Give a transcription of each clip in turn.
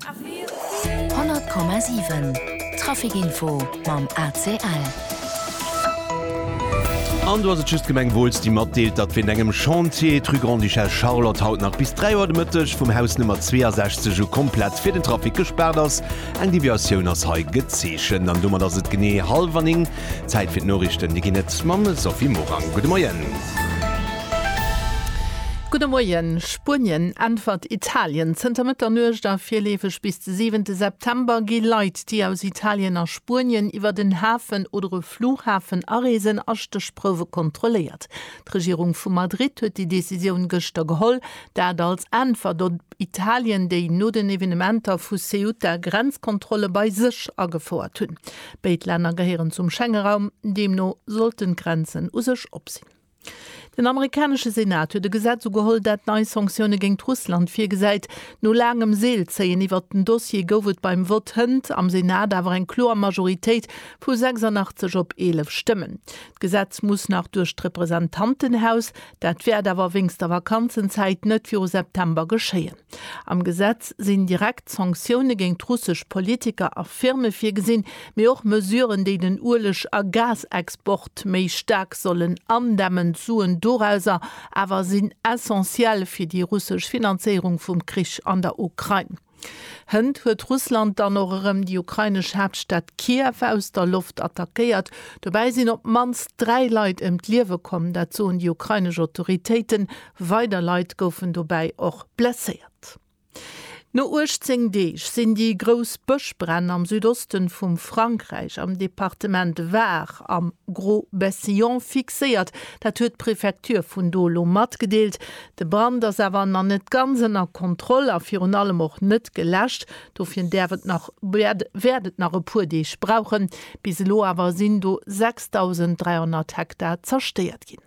100,7 Traficinfo mam ACL. An do ass et just d'Gemeng Wooltz, déi matdeelt, datt wéint engem Chantier d'Rue Grande-Duchesse Charlotte haut nach bis 3 Auer de Mëtteg vum Haus Nummer 62 u komplett fir den Trafic gespaart ass. Eng Deviatioun ass hei gezeechent. An domat ass et genee hallwer 9. Zäit fir d'Noriichten. Déi ginn et mam Sophie Morang. Gudde Moien. Gudde Moien, Spuenien äntwert Italien zënter Mëtternuecht a virleefeg bis de siwente September gi Leit, déi aus Italien a Spuenien iwwert en Hafen oder e Flughafen areesen, a Stéchprouwe kontrolléiert. D'Regierung vu Madrid huet déi Decisioun gëschter geholl, dat als Äntwert op Italien, déi no den Evenementer vu Ceuta Grenzkontrolle bei sech agefouert hunn. Béid Länner gehéieren zum Schengeraum, deemno sollten d'Grenzen u sech op sinn. Den amerikanesche Senat huet e Gesetz ugeholl, dat nei Sanktioune géingt Russland virgesäit. No laangem Seelzéien iwwert den Dossier gouf et beim Vott hënt am Senat awer eng kloer Majoritéit vu 86 op 11 Stëmmen. D'Gesetz muss nach duerch d'Representantenhaus, dat wäert awer wéinst der Vakanzenzäit net viru September geschéien. Am Gesetz sinn direkt Sanktioune géint russesch Politiker a Firme virgesinn, mee och Mesuren, déi den Ueleg a Gasexport méi staark sollen andämmen. D'Suen dorauser awer sinn essentiell fir déi russesch Finanzéierung vum Krich an der Ukrain. Hënt huet Russland dann och erëm déi ukrainesch Haaptstad Kiew aus der Loft attackéiert. Dobäi sinn op d'mannst dräi Leit ëm d'Liewe komm, dat soen déi ukrainesch Autoritéiten. Weider Leit goufen dobäi och blesséiert. No 18 Deeg sinn déi grouss Bëschbränn am Südoste vum Frankräich am Departement Var am Gros-Bêssillon fixéiert. Dat huet d'Prefecture vun do elo matgedeelt. De Brand ass awer nach net ganz ënner Kontroll a virun allem och net geläscht. Dofir däerf et nach, wäert et nach e puer Deeg brauchen. Bis elo awer sinn do 6.300 Hektar zerstéiert ginn.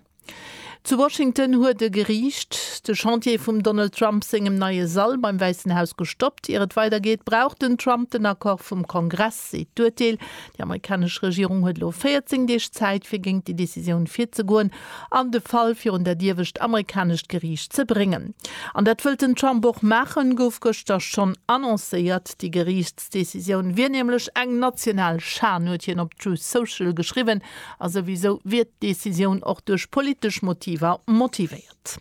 Zu Washington huet e Geriicht de Chantier vum Donald Trump sengem neie Sall beim Wäissen Haus gestoppt. Ier et weidergeet, brauch den Trump den Accord vum Kongress, seet d'Urteel. Déi amerikanesch Regierung huet elo 14 Deeg Zäit, fir géint déi Decisioun virzegoen an de Fall virun dat iewescht amerikanescht Geriicht ze bréngen. An dat wëllt den Trump och maachen, gouf gëschter schonn annoncéiert. Déi Geriichtszäit D'Decisioun wier nämlech eng national Schan, huet hien op Truth Social geschriwwen. A souwisou wier d'Decisioun och duerch politesch Motiver motivéiert.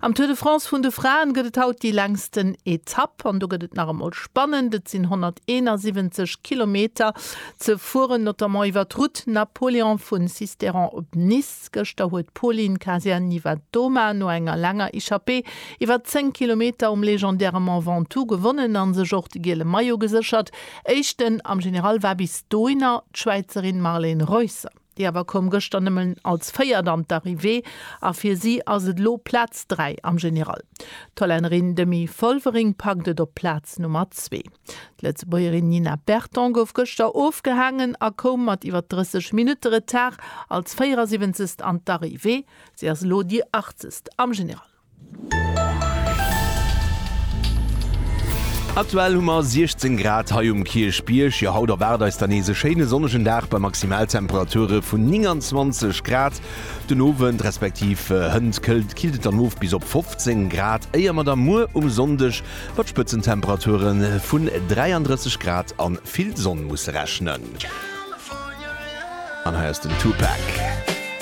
Am Tour de France vun de Fraen gëtt et haut déi längsten Etapp. An do gëtt et nach emol spannend, et sinn 171 Kilometer ze fueren, notamment iwwer d'Route Napoléon vu Sisteron op Nice. Schwäiz. Gëschter huet d'Polin Kazian-Nivattoma no enger laanger Echappée iwwer 10 Kilometer um legendäre Mont Ventoux gewonnen an sech och de giele Maillot geséchert. Éischten am General war bis dohinner d'Schwäizerin Marlene Reusser. Déi awer koum gëschter nëmmen als Véiert an d'Arrivée a fir si ass et elo Plaz 3 am General. D'Hollännerin Demi Vollering packt et op Plaz Nummer Zwee. D'Lëtzebuergerin Nina Berton gouf gëschter ofgehaangen a koum mat iwwer 30 Minutte Retard als 74. an d'Arrivée. Si ass elo déi Achtzegst am General. Aktuell hu mer 16 Grad hei um Kierchbierg. Jo, haut erwaart eis dann nees e schéine sonnegen Dag bei Maximaltemperature vun 29 Grad. Den Owend, respektiv hënt, këllt, killt et dann of bis op 15 Grad, éier mer da muer um Sonndeg Mat Spëtzentemperature vun 33 Grad a vill Sonn musse rechnen. An hei ass den Tupac.